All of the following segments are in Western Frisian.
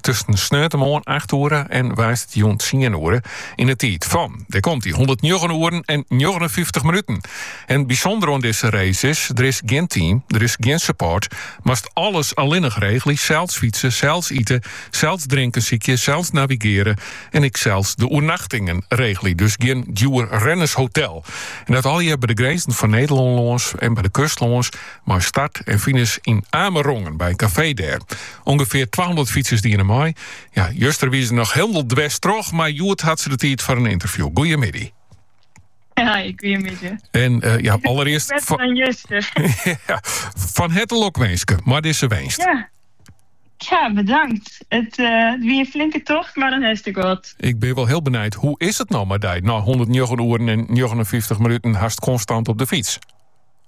tusken sneontemoarn acht oere en woansdeitejûn tsien oere yn de tiid fan, dêr komt hy, hûndertnjoggen oeren en njoggenenfyftich minuten. En bysûnder oan dizze race is, der is gjin team, der is gjin support, moatst alles allinnich regelje, sels fytse, sels iten, sels drinken sykje, sels navigearje en ek sels de oernachtingen regelje, dus gjin djoer rennershotel. En dat allegear by de grinzen fan Nederlân lâns en by de kust lâns, mei start en finish yn Amerongen by in kafee dêr. Ûngefear twahûndert fytsers diene mei. Ja, juster wie se noch hielendal dwers troch, mar hjoed hat se de tiid foar in ynterview. Goeiemiddei. Hi, goeiemiddei. En uh, ja, allerearst... Better fan... dan juster. ja, fan herte lokwinske mei dizze winst. Ja. Ja, bedankt. It uh, wie in flinke tocht, mar dan hast ek wat. Ik bin wol hiel benijd, hoe is it no mei dy? Nei 109 oeren en 59 minuten hast konstant op de fyts.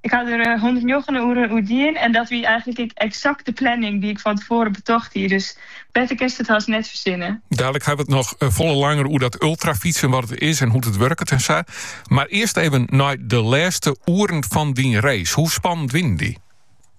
Ik haw der hûndertnjoggen oeren oer dien en dat wie eigentlik ek eksakt de planning dy't ik fan tefoaren betocht hie. Dus better kinst it hast net fersinne. Dadelik ha we it noch eh, folle langer oer dat ultrafytsen, wat it is en hoe't it wurket en sa. Mar earst even nei de lêste oeren fan dyn race. Hoe spannend wienen dy?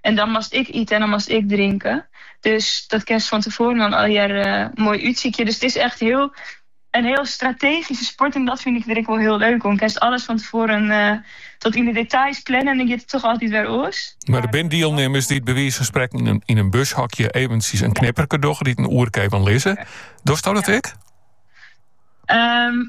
En dan moatst ek ite en dan moatst ek drinke. Dus dat kinst fan tefoaren dan allegear moai útsykje. Dus it is echt heel, in heel strategyske sport en dat fyn ik der ek wol heel leuk oan. Kinst alles fan tefoaren eh, tot yn de details planne en dan giet it toch altyd wer oars. Mar der binne dielnimmers dy't by wize fan sprekken yn in, yn in bushokje eventjes in knipperke dogge, dy't in oerke even lizze. Dochsto dat ek? Ehm,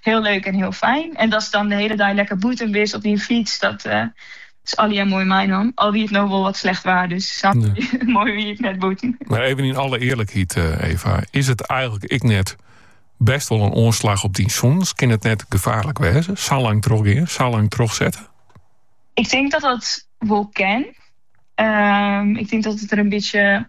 Hiel leuk en hiel fijn. En datst dan de hele dei lekker bûten bist op dyn fyts, dat is allegear moai meinommen. Al wie it no wol wat slecht waar, dus sa moai wie it net bûten. Mar even yn alle earlikheid, eh, Eva, is it eigentlik ek net best wol in oanslach op dyn sûnens? Kin it net gefaarlik wêze? Sa lang trochgean, sa lang trochsette? Ik tink dat dat wol kin. Ehm, ik tink dat it der in bytsje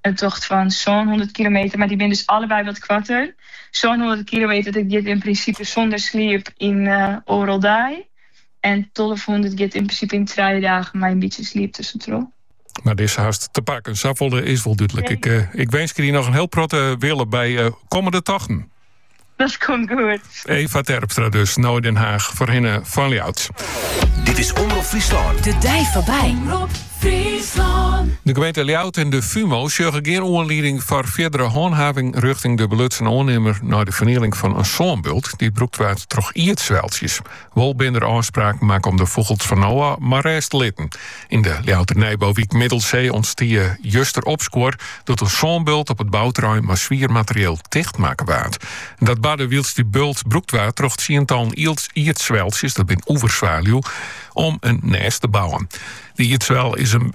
in tocht fan sânhûndert kilometer, mar dy binne dus allebei wat koarter. Sânhûndert kilometer, dat giet yn prinsipe sûnder sliep yn oardel dei. En tolvehûndert giet yn prinsipe yn trije dagen mei in bytsje sliep tussentroch. Mar dizze hast te pakken. Safolle is wol dúdlik. Ik, eh, ik winskje dy noch in hiel protte wille by eh, kommende tochten. Dat komt goed. Eva Terpstra dus, no Den Haag, foarhinne fan Ljouwert. Dit is Omrop Fryslân. De dei foarby. Omrop Fryslân. De gemeente Ljouwert en de FUMO sjogge gjin oanlieding foar fierdere hanthaving rjochting de belutsen oannimmer nei de fernieling fan in sânbult dy't brûkt waard troch ierdsweltsjes. Wol binne der ôfspraken makke om de fûgels fan no ôf mar rêst te litten. Yn de Ljouwerter nijbouwyk Middelsee ûntstie juster opskuor doe't in sânbult op it bouterrein mei swier materieel ticht makke waard. Dat barde wylst dy bult brûkt waard troch tsientallen ierdsweltsjes, dat binne oeverzwaluwen, om in nêst te bouwen. De ierdswel is in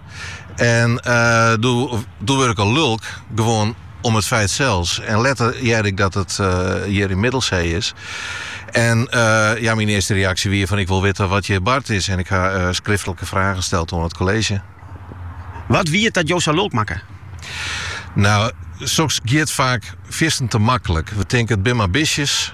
En doe wurd ik al lulk, gewoan om it feit sels. En letter hearde ik dat it hjir yn Middelsee is. En ja, myn earste reaksje wie fan ik wol witte wat hjir bard is. En ik ha skriftlike fragen steld oan it kolleezje. Wat wie it dat jo sa lulk makke? Nou, soks giet faak fierstente maklik. We tinke it binne mar bistjes.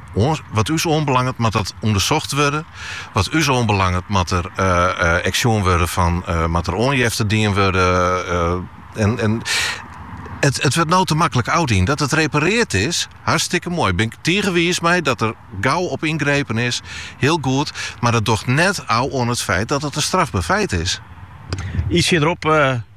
wat ús oanbelanget moat dat ûndersocht wurde. Wat ús oanbelanget moat der ek sjoen wurde fan moat der oanjefte dien wurde. en, en it, it wurdt no te maklik ôfdien. Dat it repareard is, hartstikke moai. Bin ik tige wiis mei dat der gau op yngrepen is, hiel goed. Mar dat docht net ôf oan it feit dat it in strafber feit is. Iets hierop uh, eh,